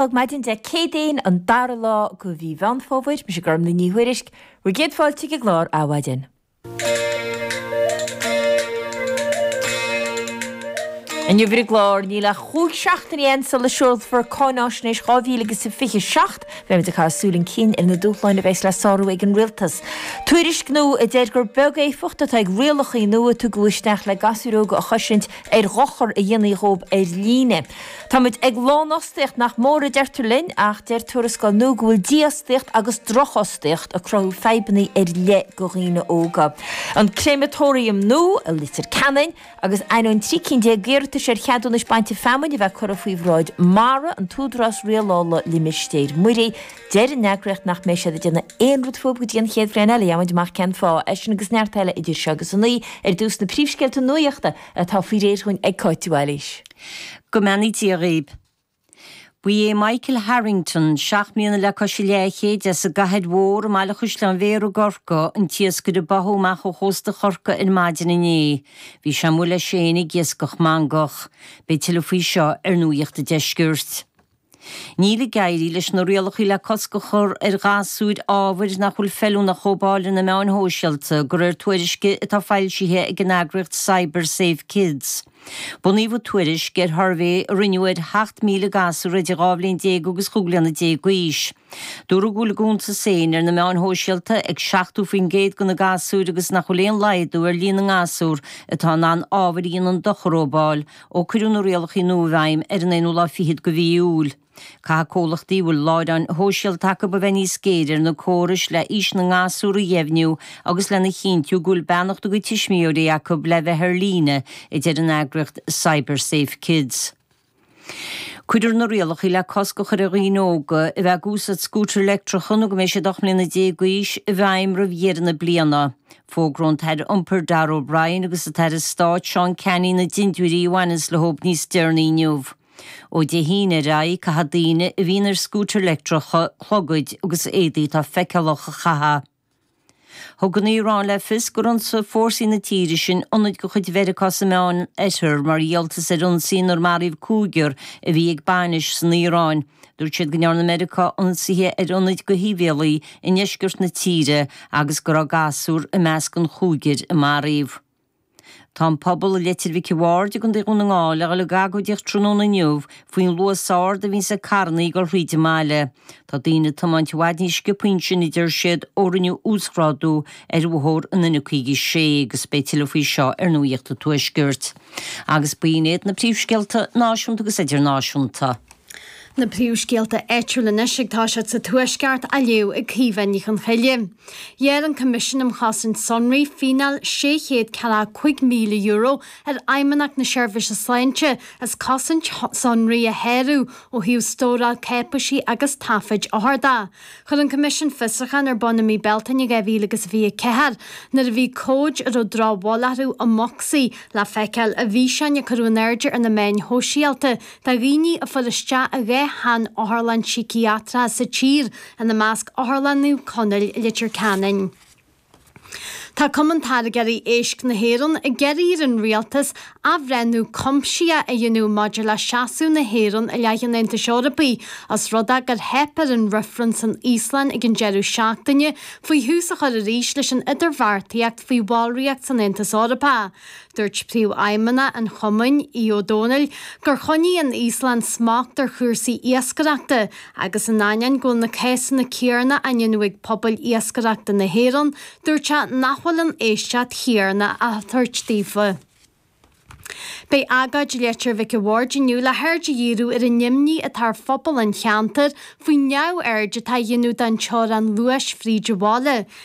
Ag maidin Dé Céadaoin an dara lá go Mhí Mheán Fómhair, mise Gormfhlaith Ní Thuairisg, bhur gcéad fáilte chuig clár Adhmhaidin. Inniu ar an gclár Níl ach chúig seachtaine ann sula seolfar Cáinfháisnéis 2027, beimid ag caitheamh súil chun cinn ar na dúshláin a bheas le sárú ag an Rialtas. Tuairisc nua a deir gur beag éifeacht atá ag rialachaí nua a tugadh isteach le gasúir óga a chosaint ar dhochar a dhéanfaí dhóibh ar líne. Táimid ag lánfhostaíocht nach mór a deirtear linn ach deir tuarascáil nua go bhfuil dífhostaíocht agus drochfhostaíocht ag cruthú fadhbanna ar leith go dhaoine óga. An créamatóiriam nua i Leitir Ceanainn agus ainneoin trí cinn déag d'iarratais ar cheadúnais bainte feamainn a bheith curtha faoi bhráid MARA, an tÚdarás Rialála Limistéir Muirí, deir an eagraíocht nach mbeidh siad ag déanamh aon rud fúibh go dtí an chéad bhliain eile, gheobhaidh muid amach cén fáth. É sin agus neart eile idir seo agus a naoi ar dtús na príomhscéalta nuachta atá faoi réir dhuinn ag Cáit Wallace. Go mbeannaí Dia dhaoib. Ba é Michael Harrington, seacht mbliana le cois a leathchéid, as an gCathair Mhór i mBaile Chaisleáin Bhéarra i gCorcaigh, an t-iascaire a báthadh amach ó chósta Chorcaí ar maidin inné. Bhí sé amuigh leis féin ag iascach mangach. Beidh tuilleadh faoi seo ar Nuacht a' Deiscirt. Níl ag éirí leis na rialacha le cosc a chur ar ghasúir ábhair nach bhfuil feiliúnach dhóibh a fháil ar na meáin shóisialta, de réir tuairisce atá foilsithe ag an eagraíocht Cyber Safe Kids. Bunaíodh an tuairisc ar shuirbhé a rinneadh ar sheacht míle gasúr idir dhá bhliain déag agus chúig bhliana déag d'aois. Dúradh go bhfuil a gcuntas féin ar na meáin shóisialta ag seachtó faoin gcéad de na gasúir agus nach bhfuil aon laghdú ar líon na ngasúr atá in ann ábhair a dhéanann dochar dhóibh a fháil Ó cuireadh na rialachaí nua i bhfeidhm ar an aonú lá fichead de mhí Iúil, caithfidh comhlachtaí a bhfuil láithreáin shóisialta acu a bheith níos géire ar na córais le aois na ngasúr a dheimhniú agus lena chinntiú go bhfuil beannacht a gcuid tuismitheoirí acu le bheith ar líne, a deir an eagraíocht CyberSafeKids. Cuirfear na rialachaí le cosc a chur ar dhaoine óga a bheith ag úsáid scútair leictreacha nó go mbeidh siad ocht mbliana déag d'aois, i bhfeidhm roimh dheireadh na bliana. Fógróidh an tAire Iompair Darragh O'Brien agus an tAire Stáit Seán Canney na dintiúirí a bhaineanns leo níos deireanaí inniu. Ó Dé hAoine ar aghaidh caithfidh daoine a bhíonn ar scútair leictreacha clogaid agus éadaí atá feiceálach a chaitheamh. Thug an Iaráin le fios gur ionsaigh fórsaí na tíre sin ionaid de chuid Mheiriceá sa Meán Oirthear mar dhíoltas ar ionsaí inar maraíodh cúigear a bhí ag bainis san Iaráin. Dúirt siad go ndearna Meiriceá ionsaithe ar ionaid go shibhialtaigh i ndeisceart na tíre agus go raibh gasúr i measc an chúigir a maraíodh. Tá an pobal i Leitir Mhic an Bhaird i gContae Dhún na nGall ag dul ag agóidíocht tráthnóna inniu faoin luas ard a bhíonns ag carrannaí ag dul thríd an mbaile. Tá daoine ag tiomáint i bhfad níos sciopthaí ansin a deir siad ó rinneadh uasghrádú ar bhóthar an N56 agus beidh tuilleadh faoi seo ar Nuacht an Tuaiscirt. Agus b'in iad na príomhscéalta náisiúnta agus idirnáisiúnta. Na príomhscéalta áitiúla anois, ag toiseacht sa Tuaisceart, á léamh ag Caoimhe Ní Chonchoille. Ghearr an Coimisiún um Chosaint Sonraí fíneáil €645,000 ar Fheidhmeannacht na Seirbhíse Sláinte as cosaint sonraí a shárú ó thaobh stóráil cáipéisí agus taifid othar de. Chuir an Coimisiún fiosrúchán ar bun i mí Bealtaine 2024 nuair a bhí comhaid a raibh drochbhail orthu i mbocsaí le feiceáil i bhfíseáin a cuireadh in airde ar na meáin shóisialta de dhaoine a fuair isteach i dhá shean-otharlann síciatracha sa tír, ina measc Otharlann Naomh Conaill i Leitir Ceanainn. Tá Cumann Táirgeoirí Éisc na hÉireann ag iarraidh ar an Rialtas athbhreithniú cuimsitheach a dhéanamh maidir le seasamh na hÉireann i leith an Aontais Eorpaigh os rud é gur theip ar an reifreann san Íoslainn ag an deireadh seachtaine faoi thús a chur arís leis an idirbheartaíocht faoi bhallraíocht san Aontas Eorpach. Dúirt Príomhfheidhmeannach an Chumainn, Aodh Ó Domhnaill, gur choinnigh an Íoslainn smacht ar chúrsaí iascaireachta agus in ainneoin go bhfuil na cásanna céarna á ndéanamh ag pobail iascaireachta na hÉireann, dúirt sé nach bhfuil an éisteacht chéarna á thabhairt daofa. Beidh agóid i Leitir Mhic a' Bhaird inniu le haird a dhíriú ar an imní atá ar phobal an cheantair faoin neamhaird atá á dhéanamh den teorainn luais fríd an bhaile,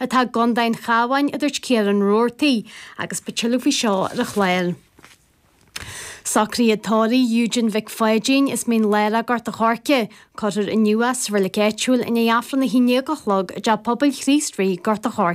atá i gCondae an Chabháin, a dúirt Ciarán Roarty agus beidh tuilleadh faoi seo ar an chlár. Socruithe tórraimh Eugene Mhic Pháidín as Mín Lárach, Gort a' Choirce, cuirfear inniu é sa reilig áitiúil i ndiaidh Aifreann a haon dhéag a chlog i dTeach Pobail Chríost Rí, Gort a' Choirce.